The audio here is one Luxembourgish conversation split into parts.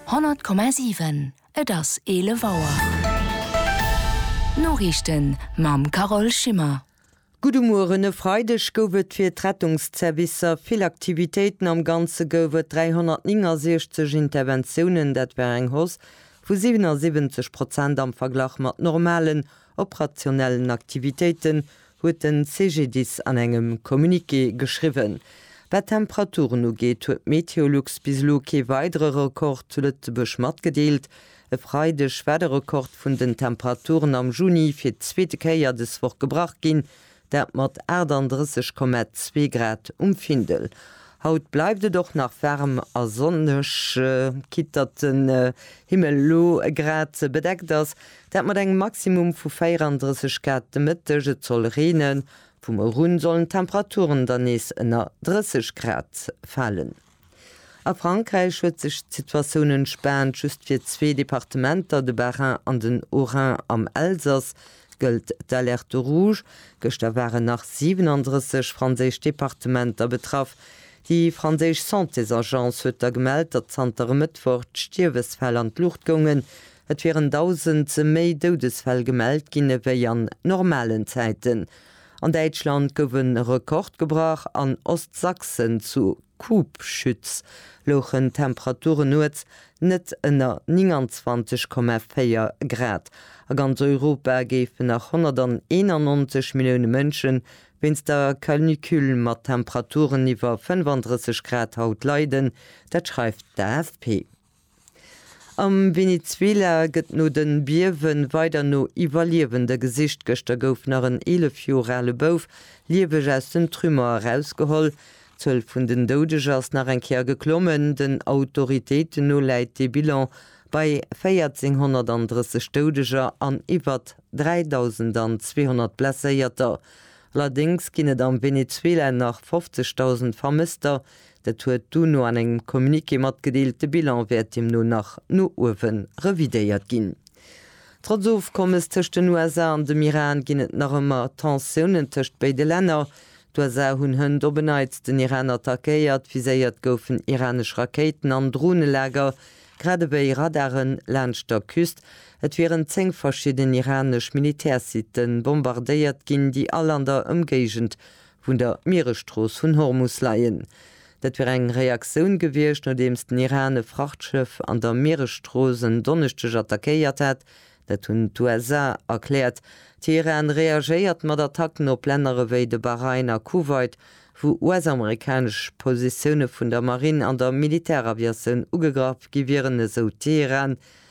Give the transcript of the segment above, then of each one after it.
100,7 Et ass 11 Auer. D'Noriichten mam Carole Schimmer. Gudde Mueren. E Freideg gouf et fir d'Rettungszervicer vill Aktivitéiten. Am Ganze gouf et 369 Interventiounen. Dat war eng Hausse vu 77 Prozent am Verglach mat normalen operationellen Aktivitéiten, huet den CGDIS an engem Communiqué geschriwwen. Wat d'Temperaturen ugeet, huet d'Meteolux bis elo kee weidere Rekord zu Lëtzebuerg matgedeelt. E Freideg war de Rekord vun den Temperaturen am Juni fir d'zweete Kéier dës Woch gebrach ginn, dat mat 38,2 Grad um Findel. Haut bleift et och nach waarm a sonneg, quitte datt den Himmel elo e Grad bedeckt ass, dat mat engem Maximum vu 34 Grad de Mëtteg. Et soll reenen, vum Moie un sollen d'Temperaturen dann nees ënner 30 Grad falen. A Frankräich huet sech d'Situatioun entspaant, just fir zwee Departementer, de Bas-Rhin an den Haut-Rhin. Am Elsass gëllt d'Alerte rouge. Gëschter waren nach 37 franséisch Departementer betraff. Déi franséisch Santésagence huet da gemellt, datt zanter e Mëttwoch d'Stierwesfäll an d'Luucht goungen. Et wieren 1.000 méi Doudesfäll gemellt ginn ewéi an normalen Zäiten. An Däitschland gouf e Rekord gebrach, an Ostsachsen zu Kubschütz louchen d'Temperaturen nuets net ënner 29,4 Grad. A ganz Europa géifen nach 191 Millioune Mënsche wéinst der Canicule mat Temperaturen iwwer 35 Grad haut leiden, dat schreift d'AFP. Am Venezuela gëtt no de Biewen weider no Iwwerliewende gesicht. Gëschter gouf nach en 11 Joer ale Bouf lieweg aus den Trümmer erausgeholl. D'Zuel vun den Doudeger ass nach eng Kéier geklommen. Den Autoritéiten no läit de Bilan bei 1.430 Doudeger an iwwer 3.200 Blesséierter. Allerdéngs ginn et am Venezuela nach 50.000 Vermësster, Dat huet d'UNO an engem Communiqué matgedeelt. De Bilan wäert deemno nach no uewe revidéiert ginn. Trotz Ofkommes tëscht den USA an dem Iran ginn et nach ëmmer Tensiounen tëscht béide Länner. D'USA hunn hënt op en Neits den Iran attackéiert. Viséiert goufen iranesch Rakéiten an Dronelager, grad ewéi Radare laanscht der Küst. Et wieren 10 verschidden iranesch Militärsitte bombardéiert ginn, déi all an der Ëmgéigend vun der Mieresstrooss vun Hormus leien. Dat wier eng Reaktioun gewiescht, nodeems den Iran e Frachtschëff an der Mieresstrooss en Donneschdeg attackéiert hat. Dat hunn d'USA erkläert. Teheran reagéiert mat Attacken op Länner ewéi de Bahrain a Kuwait, wou US-amerikanesch Positioune vun der Marinn an der Militäraviatioun ugegraff gi wieren, esou Teheran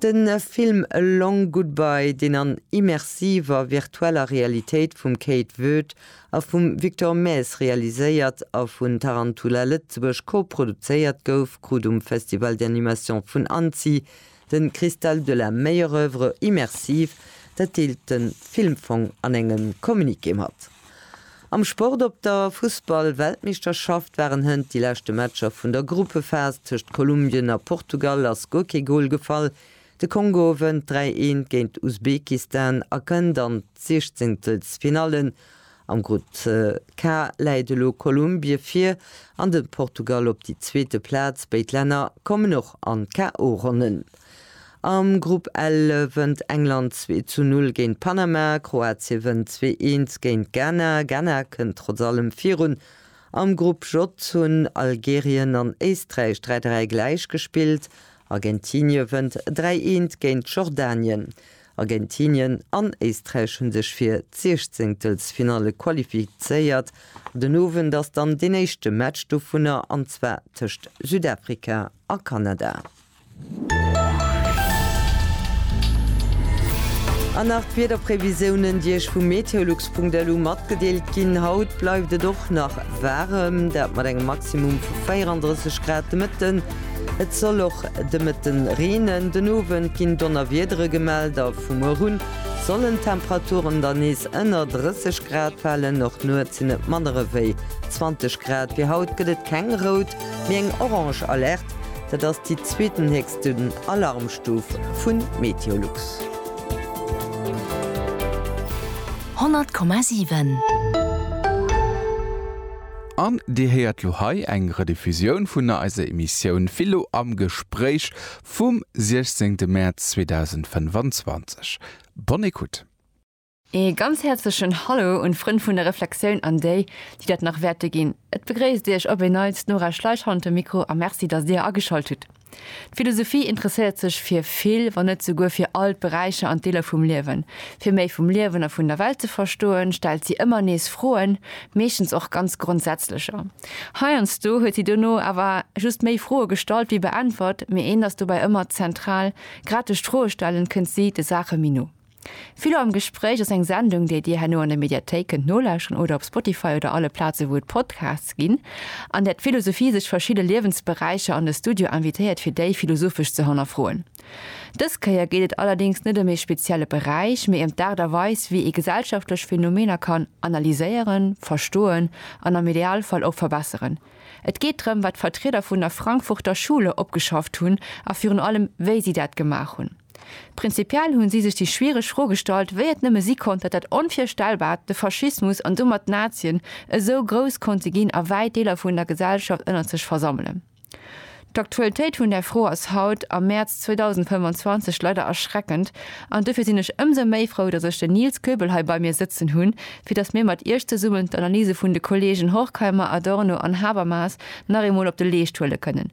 De Film A Long Goodbye, deen an immersiver virtueller Realitéit vum Kate Voet a vum Victor Maes realiséiert a vun Tarantula Lëtzebuerg koproduzéiert gouf, krut um Festival d'animation vun Annecy de Cristal de la meilleure œuvre immersive. Dat deelt de Filmfong an engem Communiqué mat. Am Sport, Op der Fussball-Weltmeeschterschaft waren hënt déi leschte Matcher vun der Gruppephas. Tëscht Kolumbien a Portugal ass guer kee Gol gefall. De Kongo wënnt 3, 1 géint Usbekistan a kënnt an d'Siechzehntelfinallen. Am Grupp K läit elo Kolumbie vir an de Portugal op déi zweete Plaz. Béid Länner kommen och an d'KO-Ronnen. Am Grupp L wënnt England zwee zu null géint Panama, Kroatie wënnt zwee eens géint Ghana, Ghana kënnt trotz allem virun. Am Grupp J hunn Algerien an Éisträich dräi dräi gläich gespillt, Argentinie wënnt dräi eens géint Jordanien. Argentinien an Éisträich hunn sech fir d'Siechzéngtelsfinalle qualifizéiert. Den Owend ass dann deen éischte Match dovunner, an zwar tëscht Südafrika a Kanada. An nach d'Wiederprevisiounen, déi Iech vu meteolux.lu matgedeelt ginn. Haut bleift et och nach waarem, dat mat engem Maximum vu 34 Grad de Mëtten. Et soll och de Mëtten reenen. Den Owend ginn Donnerwiedere gemellt a vu muer un sollen d'Temperaturen dann nees ënner 30 Grad falen. Och nuets sinn et manner ewéi 20 Grad. Fir haut gëtt et keng rout Mee eng orange Alerte, dat ass déi zweetenhéchsten Alarmstuf vu Meteolux. 100,7. An Dir héiert lo hei eng Rediffusioun vun eiser Emissioun Philo am Gespréich vum 16 Mäerz 2025. Bonne écoute. Ee ganz häerzlechen Hallo un d'Frënn vun der Reflexioun an déi, déi dat nach wäerte ginn. Et begréisst Iech op een Neits d'Nora Schleich hannert dem Mikro a Merci, datt Dir ageschalt hutt. D'Philosophie interesséiert sech fir vill, wann net souguer fir all d'Beräicher an d'Deeler vum Liewen. Fir méi vum Liewen a vun der Welt ze verstoen, stellt si ëmmer nees Froen, meeschtens och ganz grondsätzlecher. Heiansdo huet si dono awer just méi Froe gestallt wéi beäntwert, mee eent ass dobäi ëmmer zentral, Grad duerch d'Froestellen kënnt si de Saache méi no. Philo am Gespréich ass eng Sendung, déi Dir herno an der Mediathéik kënnt nolauscheren oder op Spotify oder alle Plaze wou et Podcasts ginn, an där d'Philosophie sech verschidde Liewensberäicher an de Studio invitéiert fir déi philosophesch ze hannerfroen. Dës Kéier geet et allerdéngs net ëm ee spezielle Beräich, mee ëm d'Aart a Weis wéi ee gesellschaftlech Phänomener kann analyséieren, verstoen an am Idealfall och verbesseren. Et geet drëm wat d'Vertrieder vun der Frankfurter Schule opgeschafft hunn a virun allem wéi si dat gemaach hunn. Prinzipiell hunn si sech déi schwiereg Fro gestallt, wéi et nëmme si konnt, datt dat Onvirstellbart, de Faschismus an domat d'Nazien, esou grouss konnte ginn a wäit Deeler vun der Gesellschaft ënnert sech versammelen. D'Aktualitéit vun där Fro ass haut, am Mäerz 2025, leider erschreckend an dofir sinn ech ëmsou méi frou, datt ech den Nils Goebel hei bei mir sëtzen hunn, fir datt mir mat Iech zesummen d'Analyse vun de Kollegen Horkheimer, Adorno an Habermas nach eemol op de Leescht huele kënnen.